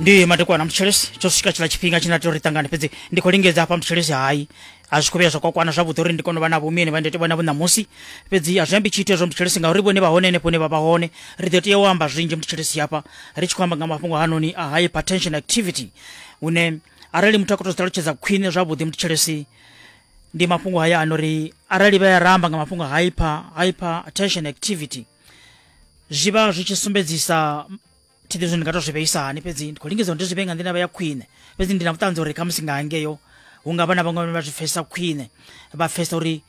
ndi madekwana mutshilisi tsho swika tshiḽa tshifhinga tshine a tea uri ṱangane fhedzi ndi khou lingedza hafha mutshilisi hayi a zwi khou vhuya zwa kwakwana zwavhuḓi uri ndi kone u vha na vhumini vha ndi vhona vhu ṋamusi fhedzi a zwi ambi tshithu hezwo mutshilisi ngauri vhone vha hone henefho hune vha vha hone ri ḓo tea u amba zwinzhi mutshilisi hafha ri tshi khou amba nga mafhungo hanoni a high hypertension activity hune arali muthu a khou tou ṱalutshedza khwine zwavhuḓi mutshilisi ndi mafhungo haya a no ri arali vha ya ramba nga mafhungo a hyper hypertension activity zwi vha zwi tshi sumbedzisa thi ḓivhi zwo ndi nga tou zwi vheisa hani fhedzi ndi khou lingedza uri ndi zwi vhee nga nḓila vha ya khwine fhedzi ndi na vhuṱanzi uri khamusi nga hangeyo hu nga vha na vhaṅwe vhane vha zwi pfesesa khwine vha pfesesa uri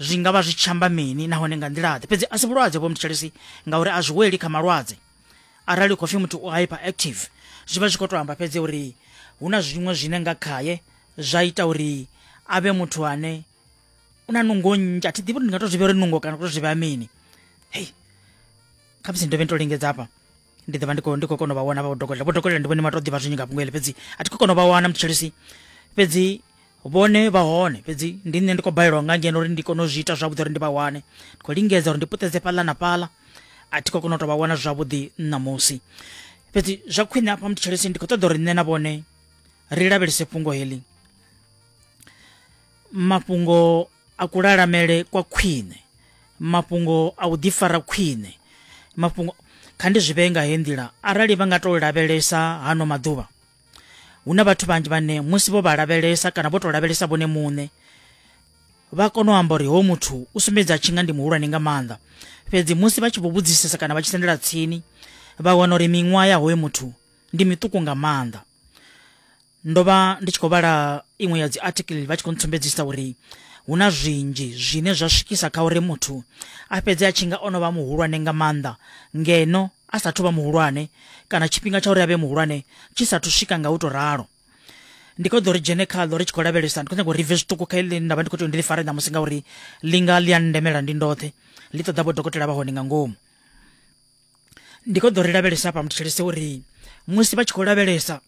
zwi nga vha zwi tshi amba mini nahone nga nḓilaḓe fhedzi a si vhulwadze vho mthetshelesi ngauri a zwi weli kha malwadze arali khou pfhi muthu u hyper active zwi vha zwi khou tou amba fhedzi uri hu na zwiṅwe zwine nga khaye zwa ita uri a vhe muthu ane u na nungo nnzhi a thi ḓivhi uri ndi nga to zwi vhea uri nungo kana u to zwi vhea mini hei kha musi ndovhe nto lingedza hafha ndi ḓovha ndi khou ndi khou kona u vha wana vha dokotela vho dokotela ndi vhone vha to ḓivha zwinzhi nga fhungo heḽi fhedzi a thi khou kona u vha wana muthetshelesi fhedzi vhone vha hone fhedzi ndi nṋe ndi khou balelwa nga ngeno uri ndi kone u zwi ita zwavhuḓi uri ndi vha wane ndi khou lingedza uri ndi puṱedze fhaḽa na fhaḽa a thi khou kona u to vha wana zwavhuḓi ṋamusi fhedzi zwa khwine hafha muthetshelesi ndi khou ṱoḓa uri nṋe na vhone ri lavhelese fhungo heḽi mafhungo a kulalamele kwa khwine mafhungo a u ḓifara khwine mafhungo kha ndi zwi vhee nga he nḓila arali vha nga tou lavhelesa hano maḓuvha hu na vhathu vhanzhi vhane musi vho vha lavhelesa kana vho tou lavhelesa vhone muṋe vha kona u amba uri ho muthu u sumbedza tshi nga ndi muhulwane nga maanḓa fhedzi musi vha tshi vho vhudzisesa kana vha tshi sendela tsini vha wana uri miṅwaha ya hoyo muthu ndi miṱuku nga maanḓa ndo vha ndi tshi khou vhala iṅwe ya dzi article vha tshi khou ntsumbedzisa uri hu na zwinzhi zwine zwa swikisa kha uri muthu a fhedze a tshi nga o no vha muhulwane nga maanḓa ngeno a sathu vha muhulwane kana tshifhinga tsha uri a vhe muhulwane tshi sathu swika nga u tou ralo ndi khou ḓo ri dzhene khaḽo ri tshi khou lavhelesa ndi khou nyanga uri ri bve zwiṱuku kha iḽi nda vha ndi khou tea ndi ḽi fare ṋamusi ngauri ḽi nga ḽi a ndemela ndi ndoṱhe ḽi ṱoḓa vho dokotela vha hone nga ngomu ndi khou ḓo ri lavhelesa hafha muthetshelese uri musi vha tshi khou lavhelesa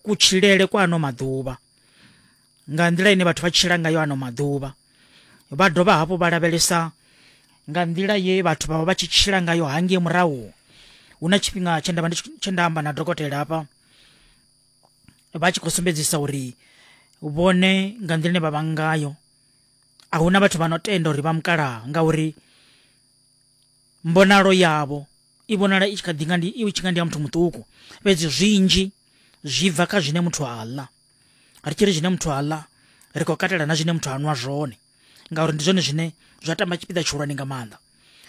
kutshilele kwa ano maḓuvha nga nḓila ine vhathu vha tshila ngayo ano maḓuvha vha dovha hafhu vha lavhelesa nga nḓila ye vhathu vha vha vha tshi tshila ngayo hangei murahu hu na tshifhinga tshe ndavha tshe nda amba na dokotela hafha vha tshi khou sumbedzisa uri vhone nga nḓila ine vha vha ngayo a huna vhathu vha no tenda uri vha mukalaha ngauri mbonalo yavho i vhonala i tshi kha ḓi nga ndi i tshi nga ndi ya muthu muṱuku fhedzi zwinzhi zwi bva kha zwine muthu a ḽa ri tshi ri zwine muthu a ḽa ri khou katela na zwine muthu a nwa zwone ngauri ndi zwone zwine zwa tamba tshipiḓa tshihulwane nga maanḓa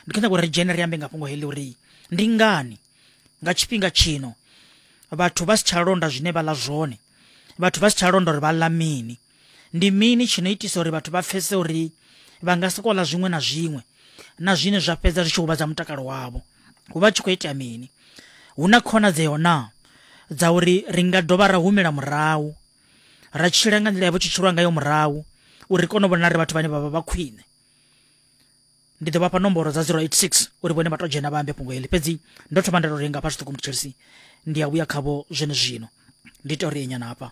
ndi khou nyanga uri ri dzhene ri ambe nga fhungo heḽi uri ndi ngani nga tshifhinga tshino vhathu vha si tsha londa zwine vha ḽa zwone vhathu vha si tsha londa uri vha ḽa mini Ndi mini tshi no itisa uri vhathu vha pfese uri vha nga si kola zwiṅwe na zwiṅwe na zwine zwa fhedza zwi tshi huvhadza mutakalo wavho? Hu vha tshi khou itea mini? Hu na khonadzeo na dza uri ri nga dovha ra humela murahu ra tshila nga nḓila ya vho tshi tshilwa ngayo murahu uri kone u vhona ri vhathu vhane vha vha vha khwine ndi ḓo vhafha nomboro dza 086 uri vhone vha to dzhena vha ambe fhungo heḽi fhedzi ndo thoma nda to renga fha zwiṱuku mutshilisi ndi a vhuya khavho zwene zwino ndi to ri enyana hafha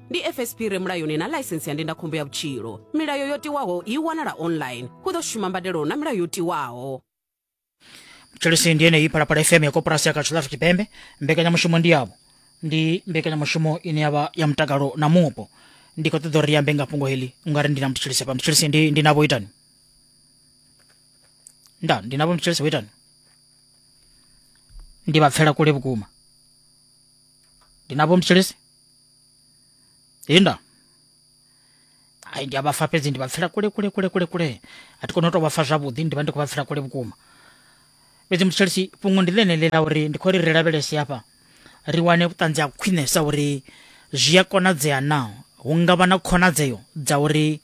ndi fsp re mulayoni na ḽaisensi ya ndindakhombo ya vhutshilo milayo yo tiwaho i wanala online hu ḓo shuma mbadelo na milayo yo tiwaho tshelisi ndi yeneyi phalaphala fm ya koporasi ya katshulafu tshipembe mbekanyamushumo ndi yavho ndi mbekanyamushumo ine yavha ya mutakalo na mupo ndi khou ṱoḓa uri ri ambe nga fhungo heḽi ungari ndi na muthu tshelisi hafha muthu tshelisi ndi, ndi navho itani nda ndi navho muthu tshelisi itani ndi vha pfela kule vhukuma ndi navho muthu tshelisi inda ai ndi a vha fa fhedzi ndi vha pfela kule kule kule kule kule a thi koni u tou vha fa zwavhuḓi ndi vha ndi khou vha pfela kule vhukuma fhedzi mutshitshisi fhungo ndi ḽeneḽi ḽa uri ndi khou ri ri lavhelese hafha ri wane vhuṱanzi ha khwinesa uri zwi a konadzea na hu nga vha na khonadzeo dza uri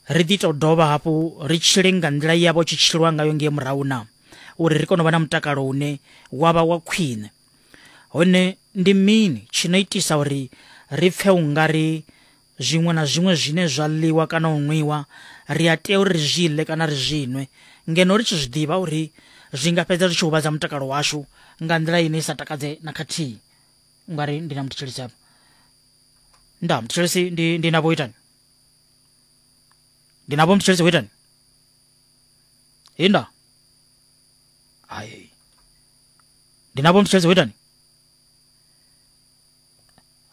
ri ḓi tou dovha hafhu ri tshile nga nḓila yavho tshi tshilwa ngayo ngei murahu na uri ri kone u vha na mutakalo une wa vha wa khwine hone ndi mini tshi no itisa uri ri pfe u nga ri zwiṅwe na zwiṅwe zwine zwa ḽiwa kana u nwiwa ri a tea uri ri zwi ḽe kana ri zwi nwe ngeno ri tshi zwi ḓivha uri zwi nga fhedza zwi tshi huvhadza mutakalo washu nga nḓila ine i sa takadze na khathihi u nga ri ndi na muthetshelesi hafha nda muthetshelesi ndi ndi na vhoitani ndi na vho muthetshelesi vhoitani hinda hai ndinapo mtshedze witani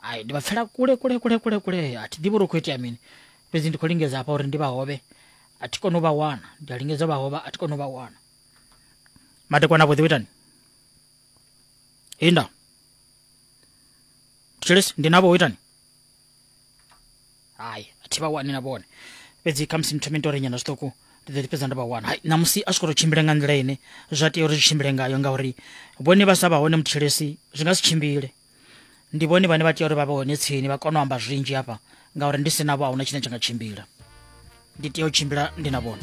ayi ndi vapfela kule kule kule kule kule ati ndi vhori khou itea mini fhedzi ndi khou lingedza hafha uri ndi vha hovhe a thi koni u vha wana ndi a lingedza u vha hovha a thi koni u vha wana madekwana avhuḓi witani inda tshilisi ndi navho witani hai a thi vha wani na vhone fhedzi khamusi nthome nto renyana zwiṱuku ndi ḓo ḓi fhedza ndo vha wana hai ṋamusi a zwi khou tou tshimbila nga nḓila ine zwa tea uri zwi tshimbile ngayo ngauri vhone vha sa vha hone muthelesi zwi nga si tshimbile ndi vhone vhane vha tea uri vha vhe hone tsini vha kone u amba zwinzhi hafha ngauri ndi si navho a huna tshine tsha nga tshimbila ndi tea u tshimbila ndi na vhone